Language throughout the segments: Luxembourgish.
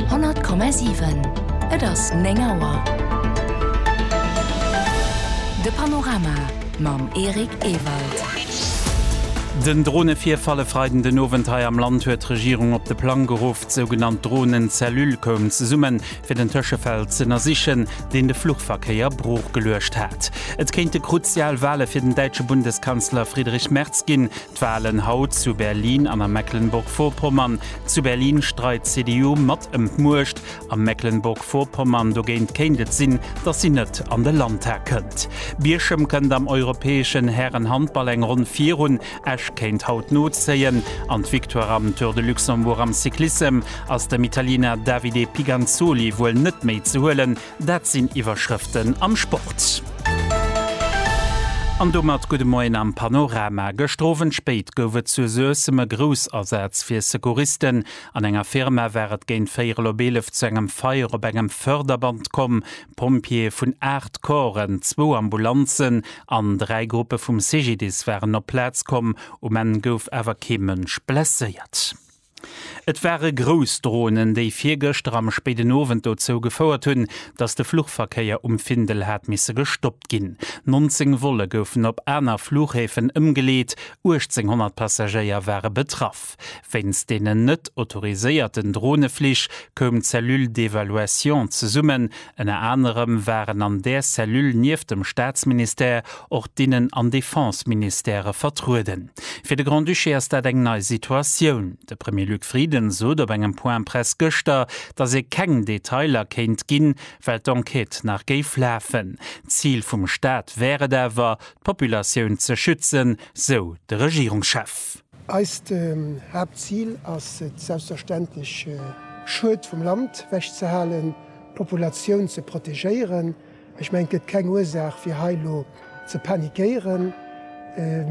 100,7 Et ass 9 Auer. De Panorama mam Eric Ewald. Den Dronevirfall e Freiden den Owend hei am Land huet d'Regierung op de Plang geruff. D'sougenannt Dronen-Cellule koum zesummen, fir den Tëschefäll ze ënnersichen, deen de Fluchverkéier broochgeluecht hat. Et kéinte kruzial Wale fir den däitsche Bundeskanzler Friedrich Merz ginn. D'Wahlen haut zu Berlin an a Mecklenburg-Vorpommern, Zu Berlin streit d'CDU mat ëm d'Muecht, a Mecklenburg-Vorpommern dogéint kéint et sinn, datt si net an de Landtag kënnt. Bierchem kënnt am europäeschen Hären-Handball eng Ronn virun, Esch kéint haut nozéien an d'Victoire am Tour de Luxembourg am Cyclissem ass dem Italiener Davide Piganzoli wuel net méi ze huelen. Dat sinn Iwwerschrëften am Sport. An domat gudde Moien am Panorama. Gëschter Owend spéit gouf et zu Suessem e Groussasaz fir Secouristen. An enger Firma war et géint véierel op eelef zu engem Feier op engem Förderband komm. Pompjeeë vun 8 Corpsen, zwou Ambulanzen an dräi Gruppe vum CGDIS waren op d'Plaz komm. Um Enn gouf awer kee Mënsch blesséiert. Et ware grouss Dronen, déi virgëschter am spéiden Owend dozou gefouert hunn, datt de Fluchverkéier um Findel hat misse gestoppt ginn. 19 Volle goufen op aner Fluchhäfen ëmgeleet, 1.800 Passagéier ware betraff. Wéinst deenen net autoriséierten Droneflich koum d'Cellule d'évaluation zesummen, Ënner anerem waren an där Cellule nieft dem Staatsministère och d'Innen an Defenseministère vertrueden. Fir de Grand-Duché ass dat eng nei Situatioun. De Premier Luc Frieden sot op engem Point Presse gëschter, datt ee keng Detailer kéint ginn, well d'Enquête nach géif lafen. D'Zil vum Staat wär et awer, d'Populatioun ze schützen, sou de Regierungschef. Eist Haaptzil ass et selbstverständlech, Schued vum Land wech ze halen, d'Populatioun ze protegéieren. Ech mengen, et gëtt keng Ursaach, fir hei elo ze panikéieren,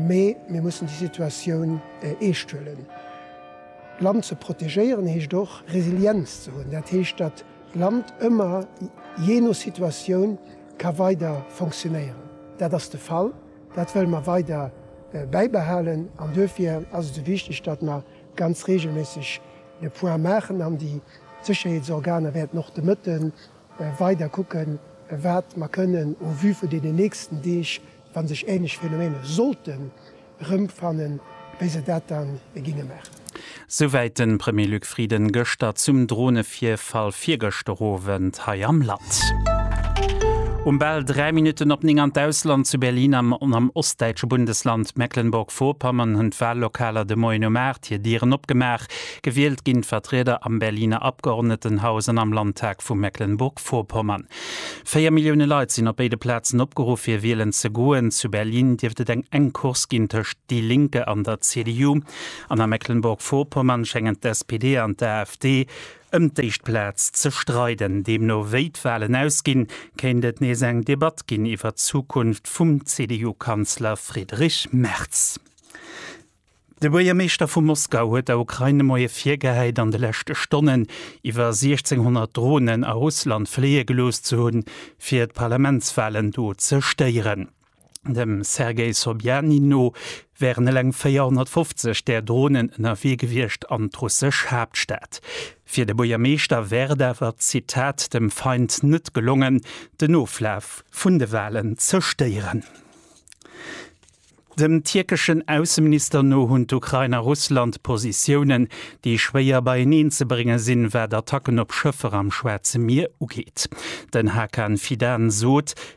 mee mir mussen déi Situatioun eescht huelen. D'Land ze protegéieren heescht och, Resilienz ze hunn. Dat heescht, datt d'Land ëmmer, jee no Situatioun, ka weider fonctionéieren. Dat ass de Fall. Dat wëlle mer weider bäibehalen an duerfir ass et esou wichteg, datt mer ganz reegelméisseg de Point maachen an déi Sécherheetsorganer wäerten och de Mëtte weider kucken, wat mer kënnen au vu vun deenen nächsten Deeg, wa sech änlech Phänomene sollten erëmfannen, wéi se dat da ginne maachen. Souwäit de Premier Luc Frieden gëschter zum Dronevirfall virgëschter Owend hei am Land. Um bal 3 Minutten op 9 an d'Ausland, Zu Berlin an am ostdäitsche Bundesland Mecklenburg-Vorpommern hunn d'Wallokaler de Moien um 8 hir Dieren opgemaach. Gewielt ginn d'Vertrieder am Berliner Abgeordnetenhaus an am Landtag vu Mecklenburg-Vorpommern. Véier Millioune Leit sinn op béide Plazen opgeruff fir wielen ze goen. Zu Berlin dierft et eng enk Course ginn tëscht déi Linke an der CDU. An a Mecklenburg-Vorpommern schéngen d'SPD an d'AfD ëm d'éischt Plaz ze streiden. Deemno wéi d'Walen ausginn, kéint et nees eng Debatt ginn iwwert d'Zukunft vum CDU-Kanzler Friedrich Merz. De Buergermeeschter vu Moskau huet der Ukrain de Moie virgehäit, an de leschte Stonnen iwwer 1.600 Dronen a Russland fléie gelooss ze hunn, fir d'Parlamentswalen do ze stéieren. Dem Sergei Sobyanin no wären eleng 450 där Dronen ënnerwee gewiescht an d'russesch Haaptstad. Fir de Buergermeeschter wär et awer, Zitat, dem Feind net gelongen, den Oflaf vun de Walen ze stéieren. Dem tierkeschen Ausseminister no hunn d'Ukrain a Russland Positiounen, déi schwéier beieneen ze brénge sinn, wat Attacken op Schëffer am Schwaarze Mier ugeet. Den Hakan Fidan sot,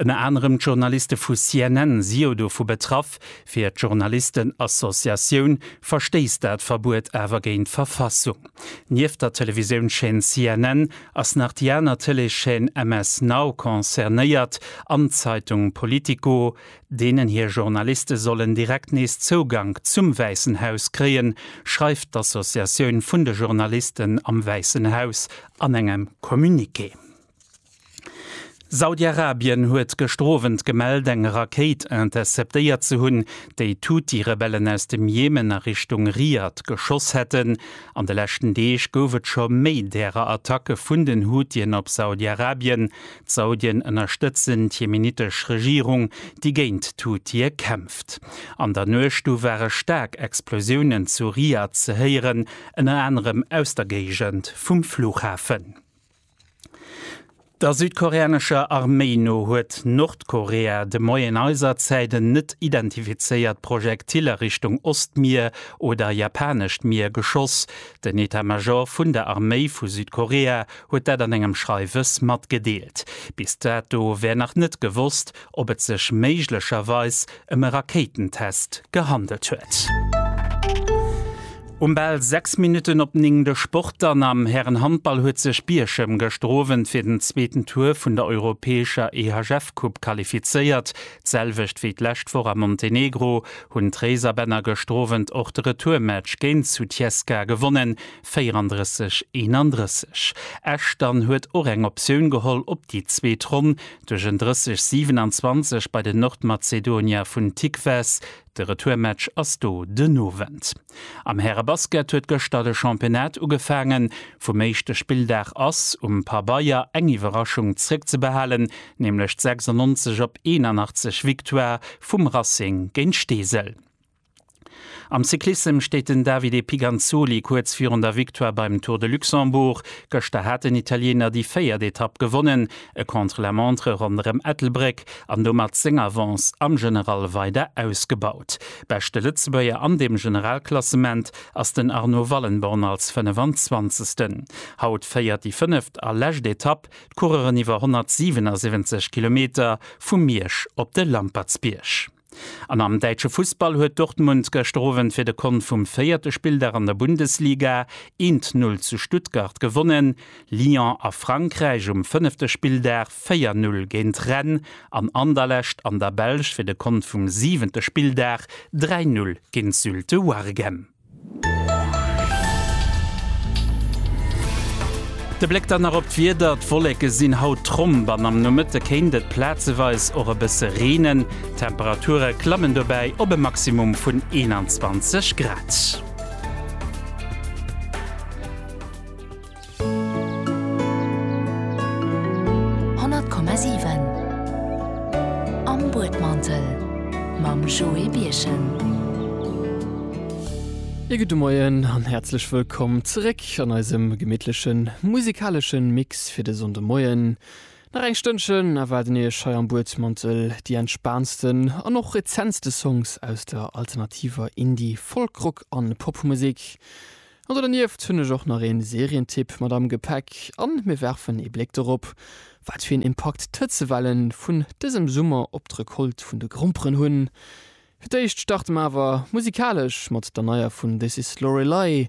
Ënner anerem d'Journaliste vu CNN si jo dovu betraff. Fir d'Journalistenassociatioun verstéisst dat Verbuet awer géint d'Verfassung. Nieft der Televisiounschaîne CNN ass nach déi aner Tëleeschaîne MS Now concernéiert an d'Zeitung Politico, deenen hir Journaliste sollen direkt nees Zougank zum Wäissen Haus kréien, schreift d'Associatioun vun de Journalisten am Wäissen Haus an engem Communiqué. Saudi-Arabien huet gëschter Owend gemellt, eng Rakéit interceptéiert ze hunn, déi d'Huthi-Rebellen aus dem Jemen a Richtung Riyadh geschoss hätten. An de leschten Deeg gouf et scho méi därer Attacke vun den Huthien op Saudi-Arabien. D'Saudien ënnerstëtzen d'jemenittesch Regierung, déi géint d'Huthie kämpft. An der Nuecht du ware staark Explosiounen zu Riyadh ze héieren, ënner anerem aus der Géigend vum Flughafen. Der südkoreanescher Arméi no huet Nordkorea de Moien eiser Zäit en net identifizéiert Projektil a Richtung Ostmier oder Japanescht Mier geschoss. Den Etat-Major vun der Arméi vu Südkorea huet dat an engem Schreiwes matgedeelt. Bis dato wär nach net gewosst, ob et sech méiglecherweis ëm e Rakéitentest gehandelt huet. Um bal 6 Minutten op 9 de Sport dann, Am Härenhandball huet sech Bierchem gëschter Owend fir den zweeten Tour vun der europäescher EHF-Coupe qualifizéiert. D'selwecht wéi d'lescht Woch a Montenegro hunn d'Réiserbänner gëschter Owend och de Retourmatch géint Sutjeska gewonnen. 34, 31, Esch dann huet och eng Optioun geholl op déi zweet Ronn duerch en 30, 27 bei den Nordmazedonier vun Tikves. De Retourmatch ass do den Owend. Am Härebasket huet gëschter de Championnat ugefaangen. Vum éischte Spilldag ass um Pabeier eng Iwwerraschung zréckzebehalen, nämlech d'96 op 81 Victoire vum Racing géint Steesel. Am Cyclissem steet den Davide Piganzoli kuerz virun der Victoire beim Tour de Luxembourg. Gëschter hat den Italiener déi véiert Etapp gewonnen, e Contre-la-montre ronderëm Ettelbréck an domat seng Avance am General weider ausgebaut. Beschte Lëtzebuerger an dem Generalklassement ass den Arnaud Wallenborn als 25. Haut féiert déi fënneft a lescht Etapp d'Coureuren iwwer 177 Kilometer vu Miersch op de Lampertsbierg. An am däitsche Fussball huet Dortmund gëschter Owend fir de Kont vum véierte Spilldag an der Bundesliga een t Null zu Stuttgart gewonnen. Lyon a Frankräich um fënnefte Spilldag véier Null géint Rennes an Anderlecht an der Belsch fir de Kont vum siwente Spilldag dräi Null géint Zulte Waregem. De Bléck dann nach op d'Wieder, d'Wolleke sinn haut tromp an am Nomëtte kéint et plazeweis och e bësse reenen. D'Temperature klammen dobäi op e Maximum vun 21 Grad. 100,7 Am Buedmantel mam Joé Birchen. Ee gudde Moien an häerzlech wëllkomm zeréck an eisem gemittlechen musikalesche Mix fir de Sonndemoien. Nach eng Stënnchen erwaarden Iech hei am Buedmantel déi entspaantsten an och rezentste Songs aus der alternativer Indie-, Folk-, Rock an Popmusek. An do dernieft hunn ech och nach ee Serientipp mat am Gepäck an mir werfen ee Bléck dorop, wat fir een Impakt d'Hëtzewelle vun dësem Summer op d'Recolte vun de Gromperen hunn. Fir d'éischt starte mer awer musikalesch mat der neier vun This Is Lorelei.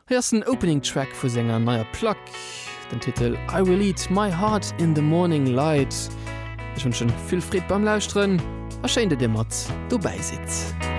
Hei ass den Opening Track vu senger neier Plack, den Titel I Will Eat My Heart In The Morning Light. Ech wënschen vill Freed beim Lauschteren a schéin dat dir mat dobäi sidd.